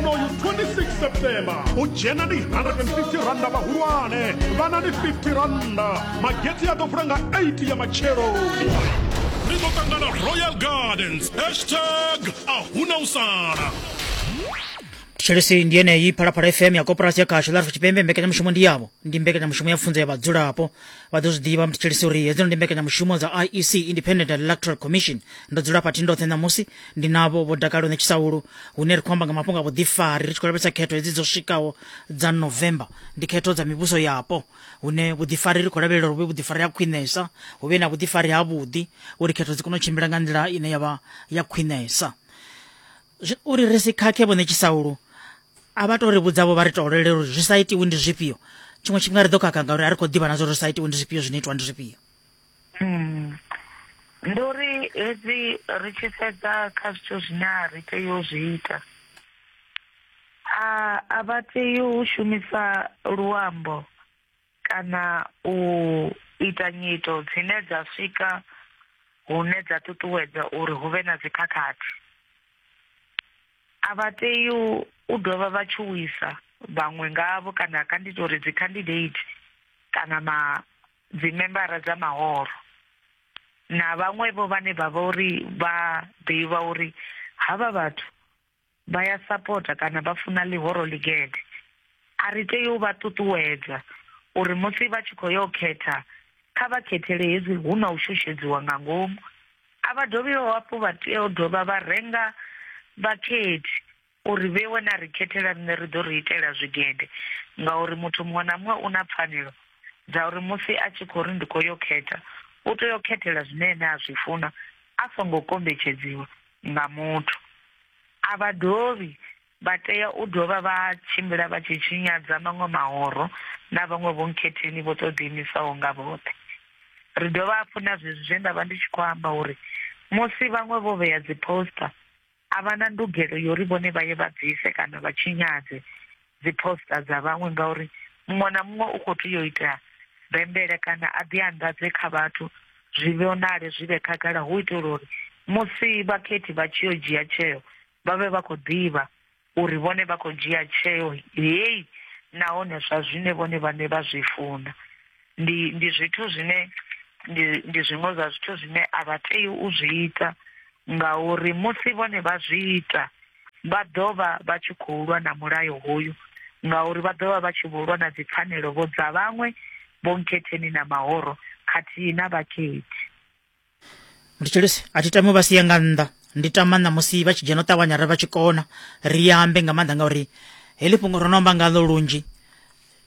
onoyu 26 september u dzhena ndi 150 randa vhahulwane vhana ndi 50 randa mageti a ḓo vula nga 8 ya matshelo ri ḓo ṱangana royal gardens hashtag ahuna u sala thetshelesi ndi yeneyi phalaphala fm ya koporasi ya khasho ḽa tshipembe mbekanyamushumo ndi yavho ndi mbekanyamushumo ya pfunzo ya vhadzulapo vha ḓo zwi ḓivha mthetshelesi uri hedzino ndi mbekanyamushumo dza iec independent electoral commission ndo dzula fhathi ndoṱhe ṋamusi ndi navho vho dakalo ne tshisaulu hune ri khou amba nga mafhungo a vhuḓifari ri tshi khou lavhelesa khetho hedzi dzo swikaho dza november ndi khetho dza mivhuso yapo hune vhuḓifari ri khou lavhelela uri vhe vhuḓifari ha khwinesa hu vhe na vhuḓifari ha vhuḓi uri khetho dzi kone u tshimbila nga nḓila ine yavha ya khwinesa uri ri si khakhe vhone tshisaulu a vha to ri vhudzavho vha ri tolele uri zwi sa itiwi ndi zwifhio tshiṅwe tshifhinga ri ḓo khakha ngauri a ri khou ḓivha na zwo ri sa itiwi ndi zwifhio zwine itwa ndi zwifhio Hmm. Ndi uri hedzi ri tshi sedza kha zwithu zwine a ri tei u zwi ita a a vha tei u shumisa luambo kana u ita nyito dzine dza swika hune dza ṱuṱuwedza uri hu vhe na dzikhakhathi a vha tei u dovha vha tshuwisa vhaṅwe ngavho kana kha ndi tori dzi candidate kana ma dzimembara dza mahoro na vhaṅwevho vhane vha vha uri vha ḓivha uri havha vhathu vha ya sapota kana vha funa ḽihoro ḽigede a ri tei u vha ṱuṱuwedza uri musi vha tshi khou yo khetha kha vha khethele hezwi hu na u shushedziwa nga ngomu a vha dovhi hafhu vha tea u dovha vha renga vhakhethi U ri vhewe na ri khethela riṋe ri ḓo ri itela zwigede, ngauri muthu muṅwe na muṅwe u na pfanelo dza uri musi a tshi khou ri ndi khou yo khetha, u tea u khethela zwine ene a zwi funa a songo kombetshedziwa nga muthu. A vha dovhi vha tea u dovha vha tshimbila vha tshi tshinyadza maṅwe mahoro na vhaṅwe vhonkhetheni vho tou ḓiimisaho nga vhoṱhe. Ri dovha hafhu na zwezwi zwe nda vha ndi tshi khou amba uri musi vhaṅwe vho vhea dziposter a vha na ndugelo yo ri vhone vha ye vha bvise kana vha tshinyadze dzi poster dza vhaṅwe ngauri muṅwe na muṅwe u khou tea u ita bembele kana a ḓi anḓadze kha vhathu zwi vhonale zwi vhe khagala hu itela uri musi vhakhethi vha tshi yo dzhia tsheo vha vhe vha khou ḓivha uri vhone vha khou dzhia tsheo heyi nahone zwa zwine vhone vhane vha zwi funa ndi ndi zwithu zwine ndi ndi zwiṅwe zwa zwithu zwine a vha tei u zwi ita ngauri musi vhone vha zwi ita vha ḓo vha vha tshi khou lwa na mulayo hoyu ngauri vha ḓo vha vha tshi vho lwa na dzipfanelo vho dza vhaṅwe vho nkhetheni na mahoro khathihi na vhakhethi ndi tshilisi a thi tami u vha sia nga nnḓa ndi tama ṋamusi vha tshi dzhena u ṱavhanya ri vha tshi kona ri ambe nga maanḓa ngauri heḽi fhungo ro no amba ngaḽo lunzhi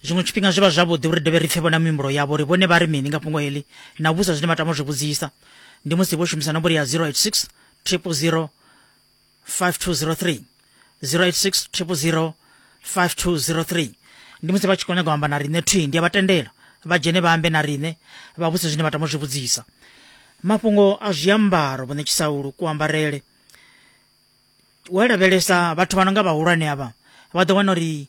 zwiṅwe tshifhinga zwi vha zwavhuḓi uri dovhe ri pfhe vhona mihumbulo yavho uri vhone vha ri mini nga fhungo heḽi na vhusa zwine vha tama u zwi vhudzisa ndi musi vho shumisa nomboro ya 086 triple 0 6 5203 086 5203 ndi musi vha tshi khou nyaga u amba na riṋe thwi ndi a vha tendela vha dzhene vha ambe na riṋe vha vhudze zwine vha tama u zwi vhudzisa mafhungo a zwiambaro vhone tshisaulu kuambarele wa lavhelesa vhathu vha no nga vhahulwane avha vha ḓo wana uri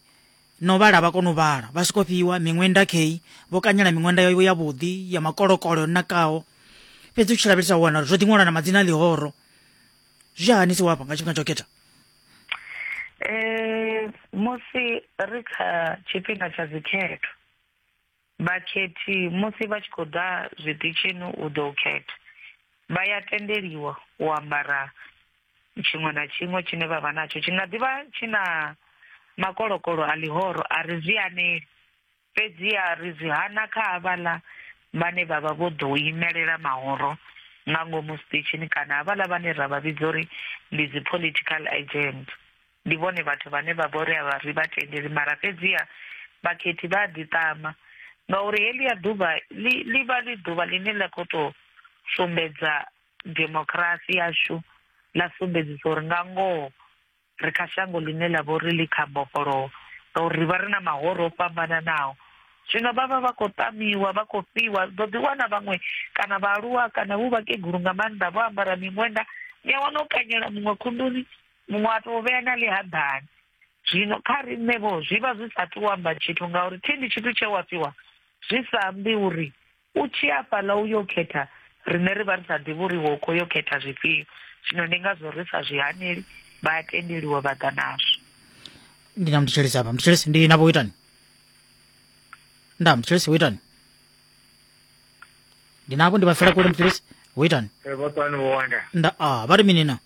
no vhala vha kona u vhala vha soko fhiwa miṅwenda kei vho kanyela miṅwenda yo ya vhuḓi ya makolokolo yo nakaho fhedzi u tshi lavhelesa u wana uri zwo ḓi ṅwalwa na madzina a ḽihoro zwi hani si wafha nga tshifhinga tsha u khetha um musi ri kha tshifhinga tsha dzikhetho vhakhethi musi vha tshi khou ḓa zwiṱitshini u ḓo khetha vha ya tendeliwa u ambara tshiṅwe na tshiṅwe tshine vha vha natsho tshi nga ḓivha tshi na makolokolo a ḽihoro a ri zwi aneli Fhedziha ri zwi hana kha havhaḽa vhane vha vha vho ḓou imelela mahoro nga ngomu zwiṱitshini kana havhaḽa vhane ra vha vhidza uri ndi dzi political agent. Ndi vhone vhathu vhane vha vha uri a ri vha tendeli mara fhedziha vhakhethi vha a ḓiṱama ngauri heḽia ḓuvha ḽi ḽi vha ḽi ḓuvha ḽine ḽa khou tou sumbedza demokirasi yashu, ḽa sumbedzisa uri nga ngoho, Ri kha shango ḽine ḽa vha uri ḽi kha mbofholowo ngauri ri vha ri na mahoro o fhambananaho. Zwino vha vha vha khou ṱamiwa, vha khou fhiwa. U ḓo ḓi wana vhaṅwe kana vhaaluwa kana vhu vhakegulu nga maanḓa vho ambara miṅwenda, ni a wana o kanyela muṅwe khunduni, muṅwe a tou vhea na ḽihaḓani. Zwino kha riṋe-vho zwi vha zwi sa tou amba tshithu ngauri thi ndi tshithu tshe wa fhiwa zwi sa ambi uri U tshi ya fhaḽa u yo khetha, riṋe ri vha ri sa ḓivhi uri iwe u khou yo khetha zwifhio. Zwino ndi ngazwo ri sa zwi haneli, vha a tendeliwa vha ḓa nazwo. Ndi na muthetshelesi hafha. Muthetshelesi, ndi na vho itani? Nda, muthetshelesi, wo itani? Ndi navho, ndi vha fela kule, muthetshelesi, wo itani? Ee, vha fhano vho wanda. Nda, a, vha ri mini na?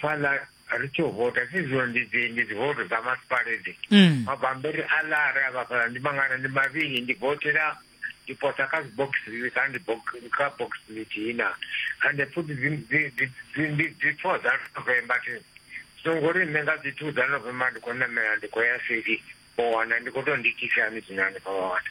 fhaḽa ri tshi u vota si zwino ndi dzi ndi dzi voto dza masipala edzi mm. mabambiri a lara a vhafhala ndi mangana ndi mavhili ndi votela ndi posa kha dzibokisi kha ndi kha bokisi ḽithihi na ande futhi ndi dzi four dza novemba thi songo ri nṋe nga dzi two dza novemba ndi khou namela ndi khou ya seli o wana ndi khou tou ndikisani zwino hanefha wa wana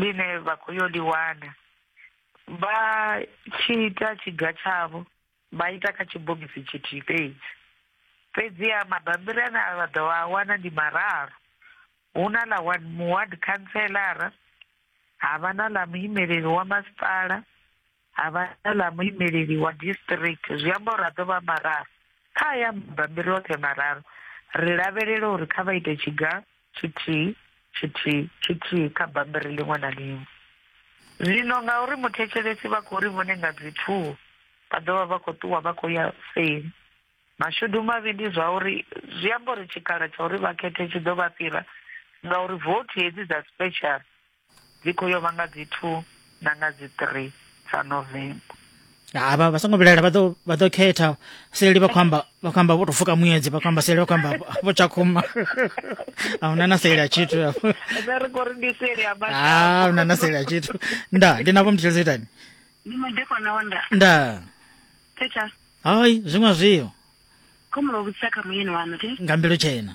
ḽine vha khou yo ḽi wana vha tshi ita tshiga tshavho vha ita kha tshibogisi tshithihi fhedzi fhedziha mabambiri ane a vha ḓo vha a wana ndi mararu hu na ḽa ward muward khantselara ha vha na ḽa muimeleli wa masipala ha vha ḽa muimeleli wa district zwi amba uri a ḓo vha mararu kha ya mabambiri oṱhe mararu ri lavhelela uri kha vha ite tshiga tshithihi tshithihi tshithihi kha bambiri ḽiṅwe na ḽiṅwe zwino ngauri muthetshelesi vha khou ri vhone nga dzithuho vha ḓo vha vha khou ṱuwa vha khou ya seli mashudu mavhi ndi zwa uri zwi amba uri tshikhala tsha uri vha khethe tshi ḓo vha fhira ngauri vothi hedzi dza special Dzi khou yo vha nga dzi two na nga dzi three dza November. ha vha vha songo vhilaela vha ḓo vha ḓo khetha seli vha khou amba vha khou amba vho tou fuka muedzi vha khou amba seli vha khou amba vho tshakhuma a huna na seli a tshithu hafho Ene ri khou ri ndi seli ya a mashango. huna na seli a tshithu nda ndi navho mutshilisa itani Ndi madekwana wa nda. nda Thetsha. hai zwiṅwe zwio Khomulo vhudzisa kha muyeni wanu, thi. nga mbilu tshena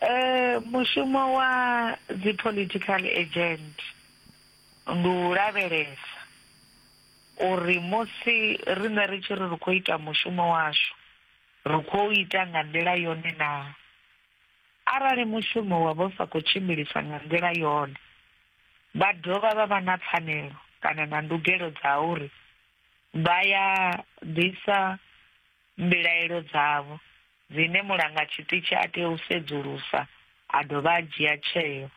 Eh mushumo wa dzi political agent ndi u lavhelesa uri musi riṋe ri tshi ri ri khou ita mushumo washu ri khou ita nga nḓila yone na arali mushumo wa vho sa khou tshimbilisa nga nḓila yone vha dovha vha vha na pfanelo kana na ndugelo dza uri vha ya ḓisa mbilaelo dzavho. dzine mulangatshiṱitshi a tea u sedzulusa a dovha a dzhia tsheo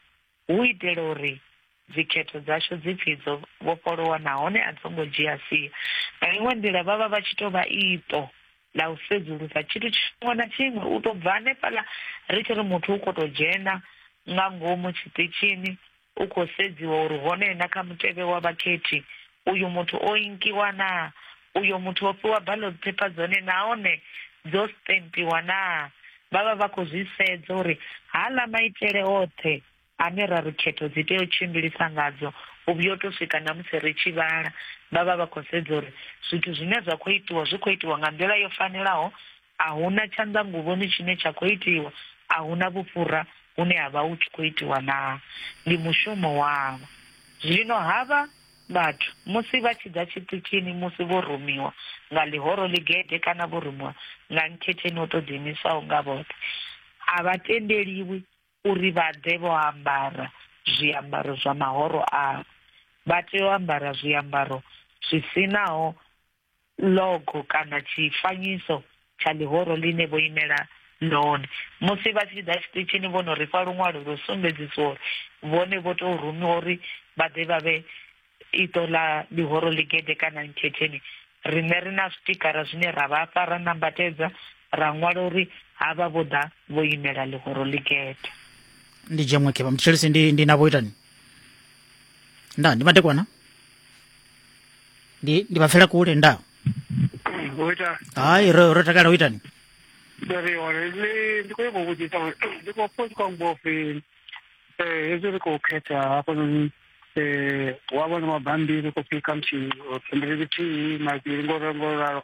hu u itela uri dzikhetho dzashu dzi pfi dzo vhofholowa nahone a dzo ngo dzhia sia. Nga iṅwe nḓila, vha vha vha tshi tou vha iṱo ḽa u sedzulusa tshithu tshiṅwe na tshiṅwe u tou bva hanefhaḽa ri tshi ri muthu u khou tou dzhena nga ngomu tshiṱitshini. U khou sedziwa uri hone na kha mutevhe wa vhakhethi uyu muthu o inkiwa naa, uyo muthu o fhiwa ballot paper dzone nahone dzo stempiwa naa. Vha vha vha khou zwi sedza uri haaḽa maitele oṱhe ane ra ri khetho dzi tea u tshimbilisa ngadzo u vhuya u tou swika na musi ri tshi vhala. Vha vha vha khou sedza uri zwithu zwine zwa khou itiwa zwi khou itiwa nga nḓila yo fanelaho a hu na tshanḓanguvhoni tshine tsha khou itiwa, a hu na vhufhura hune ha vha hu tshi khou itiwa naa? Ndi mushumo wavho. Zwino havha vhathu musi vha tshi ḓa tshiṱitshini musi vho rumiwa nga ḽihoro ḽigede kana vho rumiwa nga nkhetheni o tou ḓiimisaho nga vhoṱhe, a vha tendeliwi uri vha ḓe vho ambara zwiambaro zwa mahoro avho. Vha tea u ambara zwiambaro zwi si naho logo kana tshifanyiso tsha ḽihoro ḽine vho imela ḽone musi vha tshi ḓa tshiṱitshini vho no ri fha luṅwalo lwo sumbedzisa uri vhone vho tou rumiwa uri vha ḓe vha vhe iṱo ḽa ḽihoro ḽigede kana nkhetheni riṋe ri na zwitikara zwine ra vha fha ra nambatedza ra ṅwala uri havha vho ḓa vho imela ḽihoro ḽigede ndi dzhenwe khevha mtshelisi ndi, ndi na vho itani nda ndi madekwana ndi ndi vapfela kule nda ngoita hayi ro ro takala uitani dare ore le ndiko yebo kuti ta ndiko futhi kwa mbofi eh hezwi ri khou khetha hafhanoni eh wa vhona mabambiri ko pika muthihi or pembeleli thihi mavhili ngoralo ngoralo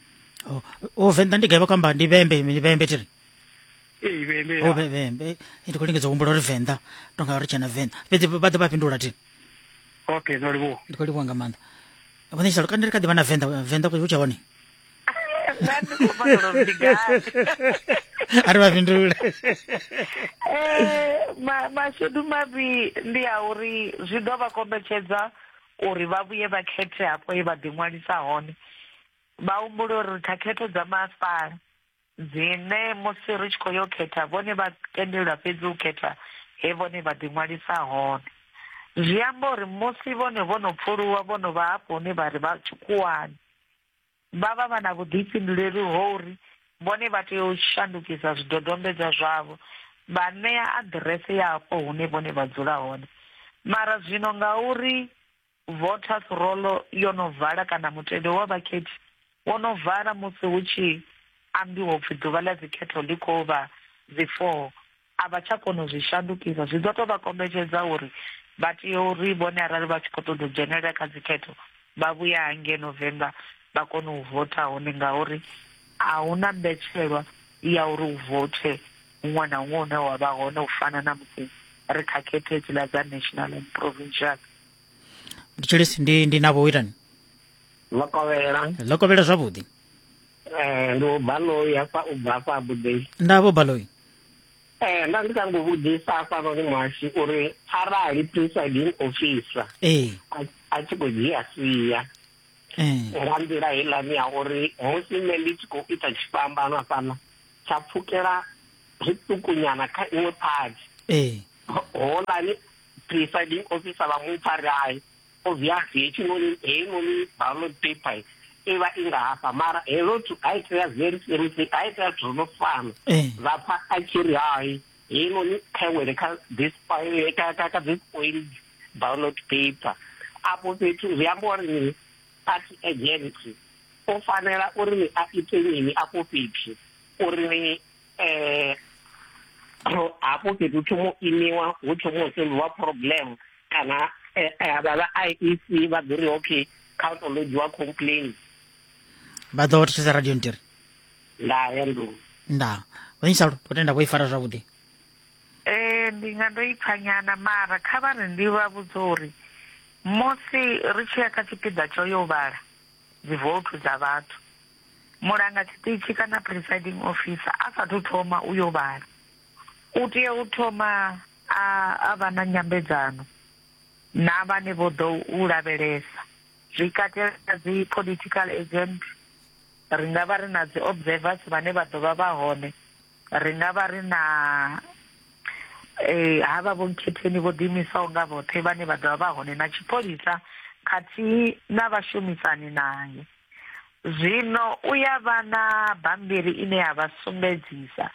Oh, oh venḓa ndi gaiva kwamba ndi vhembe ndi vhembe tiri ee vhembe oh vhembe ndi khou lingedza u humbula uri venḓa to nga uri tshena venḓa fhedzi vha ḓo vha fhindula tiri okay no livhuwa ndi khou livhuwa nga maanḓa vhone tshalo kana ndi kha ḓi vha na venḓa venḓa ku tsha hone ari vha fhindule mashudu mavhi ndi a uri zwi ḓo vha kombetshedza uri vha vhuye vha khethe hafho ye vha ḓiṅwalisa hone Vha humbule uri ri kha khetho dza masipala dzine musi ri tshi khou yo khetha vhone vha tendelwa fhedzi u khetha he vhone vha ḓiṅwalisa hone. Zwi amba uri musi vhone vho no pfuluwa vho no vha hafho hune vha ri vha tshikhuwani, vha vha vha na vhuḓifhinduleli ho uri vhone vha tea u shandukisa zwidodombedzwa zwavho vha ṋea aḓirese ya hafho hune vhone vha dzula hone. Mara zwino ngauri Voters Roll yo no vala kana mutevhe wa vhakhethi wo no vala musi hu tshi ambiwa upfi ḓuvha ḽa dzikhetho ḽi khou vha dzi 4 a vha tsha kona u zwi shandukisa. Zwi ḓo tou vha kombetshedza uri vha tea uri vhone arali vha tshi khou ṱoḓa u dzhenelela kha dzikhetho vha vhuya hangei November vha kone u votha hone ngauri a hu na mbetshelwa ya uri u vothe huṅwe na huṅwe hune wa vha hone u fana na musi ri kha khetho hedziḽa dza national and provincial. ndi tshilisi ndi ndi na vhoitani lokovhela lokovhela zwavhuḓi um ndi ubaloyi hafha u bva hafha abudei nda vho baloyi um nda ndi kango vhudzisa hafhanoni mwashu uri arali presiding officer ee a tshi khou dzhia sia nga nḓila heiḽani ya uri musi nṋe ndi tshi khou ita tshifhambano hafhaḽa tsha pfukela zwiṱukunyana kha iṅwe phathi holani presiding officer vha mupfa ri hai obviously hechinoni heinoni ballot paper i vha i nga hafha mara helo thu a itea very seriously a itea zwithu zwo fana eh. vha pfa a tshi ri hai heinoni khawele kha this ka this point ballot paper afho fhethu zwi amba uri ni party agent o fanela uri ni a ite mini afho fhethu uri ni um hafho fhethu thomo imiwa hu thomo u sengiwa problem kana eh, eh, vha vha i e c vha ḓo ri okay kha u to lodziwa complain vha ḓo thusa radio ntiri nda ya nḓuni nda vhanyisalo u tenda vho i fara zwavhuḓi um ndi nga ndo ipfa nyana mara kha vha ri ndi vha vhudza uri musi ri tshi ya kha tshipiḓa tsho yo vhala dzivoutu dza vhathu mulanga tshiṱitshi kana presiding officer a sathu thoma u yo vhala u tea u thoma a a vha na nyambedzano na vhane vho ḓo u lavhelesa zwi katela dzi political agent ri nga vha ri na dzi observers vhane vha ḓo vha vha hone ri nga vha ri na eh havha vho nkhetheni vho ḓiimisaho nga vhoṱhe vhane vha ḓovha vha hone na tshipholisa khathihi na vhashumisani naye Zwino u ya vha na bammbiri ine ya vha sumbedzisa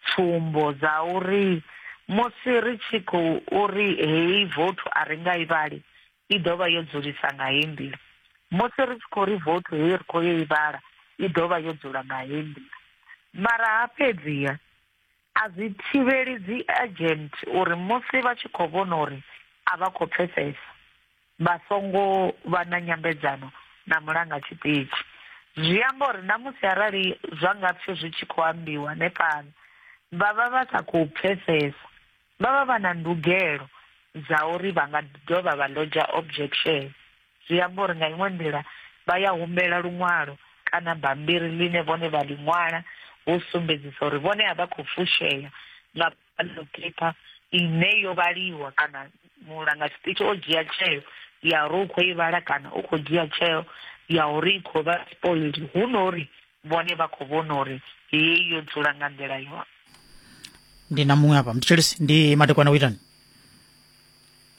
tsumbo dza uri musi ri tshi khou uri heyi vothu a ri nga i vhali i ḓo vha yo dzulisa nga heyi nḓila, musi ri tshi khou ri vothu heyi ri khou yo i vhala i ḓo vha yo dzula nga heyi nḓila. Mara ha fhedziha. A zwi thivheli dziagent uri musi vha tshi khou vhona uri a vha khou pfesesa vha songo vha na nyambedzano na mulanga tshiṱitshi. Zwi amba uri na musi arali zwa nga pfi zwi tshi khou ambiwa hanefhaḽa vha vha vha sa khou pfesesa, vha vha vha na ndugelo dza uri vha nga dovha vha lodger objection. zwi amba uri nga iṅwe nḓila vha ya humbela luṅwalo kana bammbiri ḽine vhone vha ḽi ṅwala hu sumbedzisa uri vhone a vha khou fushea nga ballot paper ine yo vhaliwa kana mulanga tshiṱitshi o dzhia tsheo ya uri u khou i vhala kana u khou dzhia tsheo ya uri i khou vha spoiled hu no uri vhone vha khou vhona uri heyi yo dzula nga nḓila yone ndi na muṅwe hafha mthetshelesi ndi madekwana u itani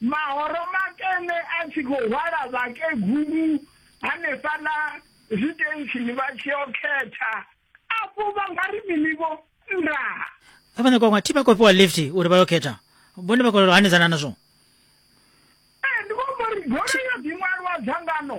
Mahoro makene a tshi khou hwala vhakegulu hanefhaḽa zwitentsini vha tshi yo khetha afho vha nga ri mini vho ndaa vha nyaka unga thi vha khou fhiwa lift uri vha yo khetha vhone vha khou hanedzana nazwo ee ndi vho mbo ri golo yo ḓiṅwalwa dzangano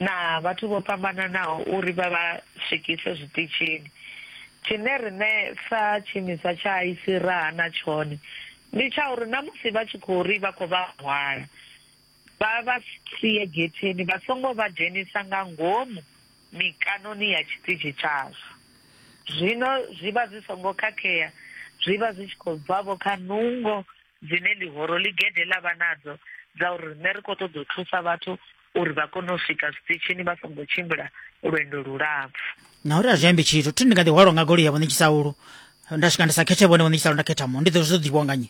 na vhathu vho fhambananaho uri vha vha swikise zwiṱitshini. Tshine riṋe sa tshiimiswa tsha ICE ra hana tshone ndi tsha uri na musi vha tshi khou ri vha khou vha hwala, vha vha sie getheni vha songo vha dzhenisa nga ngomu mikanoni ya tshiṱitshi tshashu. Zwino zwi vha zwi songo khakhea, zwi vha zwi tshi khou bva-vho kha nungo dzine ḽihoro ḽigede ḽa vha nadzo dza uri riṋe ri khou ṱoḓa u thusa vhathu uri vha kone u swika zwiṱitshini vha songo tshimbila lwendo lulapfu na uri a zwi ambi tshithu thi ndi nga ḓihwalwa nga goloi ya vhone tshisaulu nda swika ndi sa khethe vhone vhone tshisaulu nda khetha mu ndi ḓo zwo ḓivhiwa nga nyi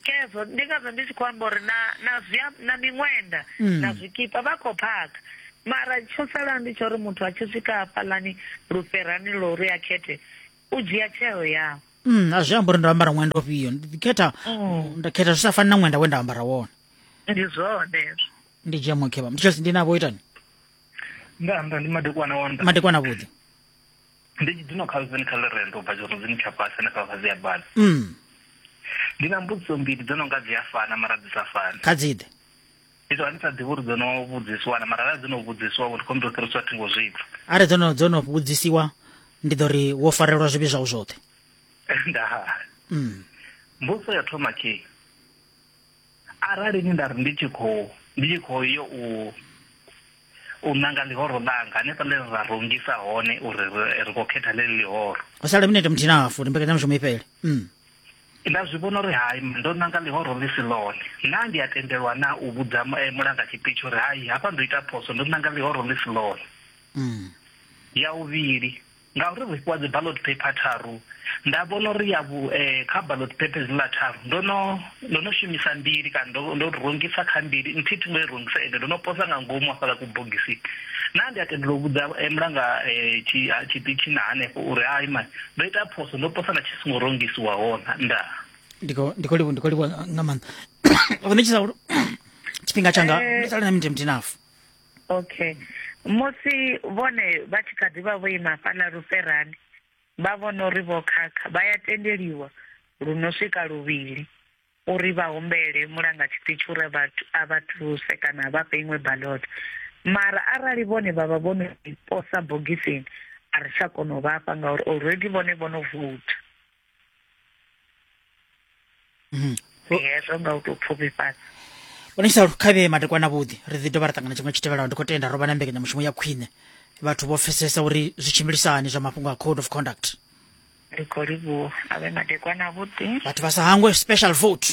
kezo ndi ngazwo ndi tshi khou amba uri na na zwia na miṅwenda mm. na zwikipa vha khou phaka mara tsho sala ndi tsho uri muthu a tshi swika hafhaḽani lufherani lo uri a khethe u dzhia tsheo yawe mm, a zwi amba uri ndo ambara ṅwenda ofhio ndi khetha mm. nda khetha zwi sa fani na ṅwenda we nda ambara wone ndi zwone ndi jemo kebam ndi chelsea ndi nabo itani nda nda ndi madekwana wanda madekwana vhuḓi ndi dzino kha zweni kha lerendo bva zwo dzini tsha fhasi na kha fhasi ya bana mm ndi na mbudziso mbili dzo no nga dzi a fana mara dzi sa fani kha dziḓe ndi to ani sa ḓivhi uri dzo no vhudzisiwa na mara ra dzo no vhudzisiwa uri khombo ṱori sa thingo zwithu are dzo no dzo no vhudzisiwa ndi ḓo ri wo farelwa zwivhi zwau zwoṱhe nda mm mbudziso ya thoma khe Arali ni nda ri ndi tshi khou ndi tshi khou yo u u nanga ḽihoro ḽanga hanefha ḽe ra rungisa hone uri ri khou khetha ḽeḽi ḽihoro ho sala minete muthihi na hafu uri mbekanyamushumo i fhele mm. nda zwi vhona uri hai ndo nanga ḽihoro ḽi si ḽone na ndi a tendelwa na u vhudza eh, mulanga tshipitshi uri hai hafha ndo ita phoso ndo nanga ḽihoro ḽi si ḽone mm. ya uvhili Ngauri ri fhiwa dzi ballot paper tharu, nda vhona uri ya vhu, eh, kha ballot paper hedziḽa tharu ndo no, ndo no shumisa mbili kana ndo, ndo rungisa kha mbili, nthihi thi ngo i rungisa ende ndo no posa nga ngomu hafhaḽa kubogisini. Naa ndi a tendela u vhudza eh, mulanga eh, tshi, ah, tshiṱitshini hanefho uri hai man, ndo ita phoso, ndo posa na tshi songo rungisiwa hona? Ndaa. Ndi khou, ndi khou livhuwa, ndi khou livhuwa nga maanḓa. Vho ṋetshisa uri tshifhinga tshanga, Eh. ndo sala na minzhe muthihi na hafu. Okay. Musi vhone vha tshi kha ḓi vha vho ima fhaḽa luferani, vha vhona uri vho khakha, vha ya tendeliwa lu no swika luvhili uri vha humbele mulanga tshiṱitshi uri a vha thuse kana a vha fhe iṅwe balota. Mara arali vhone vha vha vho no i posa bogisini, a ri tsha kona u vha fha ngauri already vhone vho no voutha. Mhm. ndi hezwo nga u tou pfufhifhadza vhona tshisa khavhe matekwana vhuḓi ri ḓi dovha ra ṱangana tshiṅwe tshi tevhelaho ndi khou tenda ro vha na mbekanyamushumo ya khwine vhathu vho pfesesa uri zwi tshimbilisahani zwa mafhungo a code of conduct ndi khou livhuwa a vhe madekwana avhuḓi vhathu vha sa hangwe special vote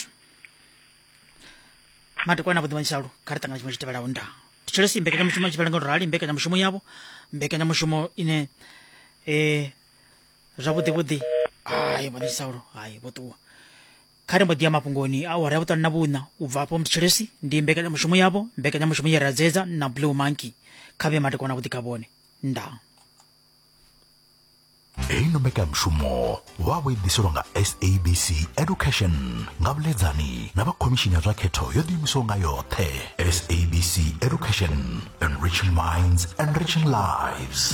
madekwana avhuḓi vhanyisalo kha ri ṱangana tshiṅwe tshi tevhelaho nda thetshelesi mbekanyamushumo tshifhelela nga u rali mbekanyamushumo yavho mbekanyamushumo ine um zwavhuḓi vhuḓi hai vho saulo hai vho ṱuwa kha ri mbo ḓi ya mafhungoni a awara ya vhuṱanu na vhuṋa u bva afho mutshilisi ndi mbekanyamushumo yavho mbekanyamushumo ye ra dzedza na blue monkey kha vhe matekwana vhuḓi kha vhone ndaa heino mbekanyamushumo vha vho i ḓiselwa nga sabc education nga vhuledzani na vha khomishini ya zwa khetho yo ḓiimisaho nga yoṱhe sabc education enriching minds enriching lives